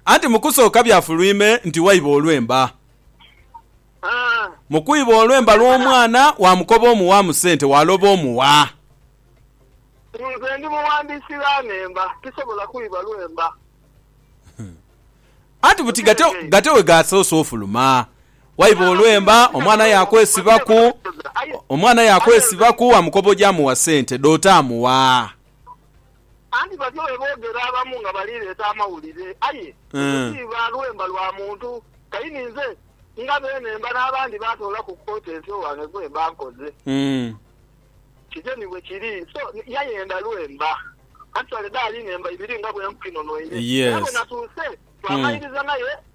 Anti mu kusooka byafulwime nti waiba olwemba. Mu kwiba olwemba lw'omwana, waamukoba omuwa mu sente, waaloba omuwa. Nze ndi mughandiisi gha nhemba, tisobola kwiba lwemba. Anti buti gate gate we gaasoose ofuluma, waiba olwemba, omwana yaakwesibaku, omwana yaakwesibaku, waamukoba oje amuwa sente, dh'otamuwa. Anti batyo bwe boogera abamu nga bali leeta amawulire, aye ekyo ti iba lwemba lwa muntu. Kaini nze nga beene mba n'abandi baatoolaku ku potensi owange gwe mba nkoze. Kityo ni bwe kiri. So, yayenda lwemba. Actually, dhaali nhemba ibiri nga bwe nkukinhonhoire. Era bwe natuuse, twamalirizang'ayo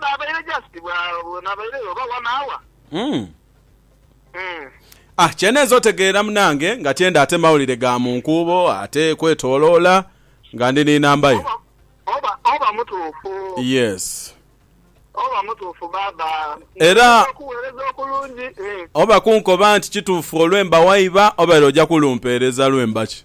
Naabaire just bwa naabaire oba one hour. Umm. Umm. Ah, kyenenze otegeera munange nga tyenda ate mawulire ga mu nkuubo ate kwetoloola nga ndi ni namba yo. Oba, oba, oba mutuufu. Yes. Oba mutuufu baaba. Era. Nja kukuweereza okulungi. Oba kunkoba nti kituufu olwemba waiba obaire oja kulumpeereza lwemba ki?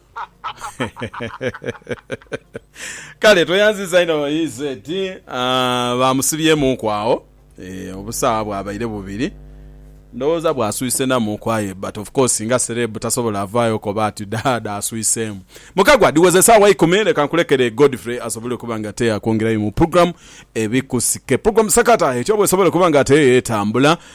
Kale tweyanziza inho EZ. Baamusibyemuuku agho obusawa bwabaire bubiri. Ndowooza bwaswisenamuuku aye but of course nga celeb tasobola vaayo koba ati dhaadha aswiseemu. Mukagwa dhiwoza esaawa ikumi leka nkulekere Godfrey asobole okuba nga ate akwongerayo mu program ebikusike. Program Sakata etyo bwesobola okuba nga ate etambula.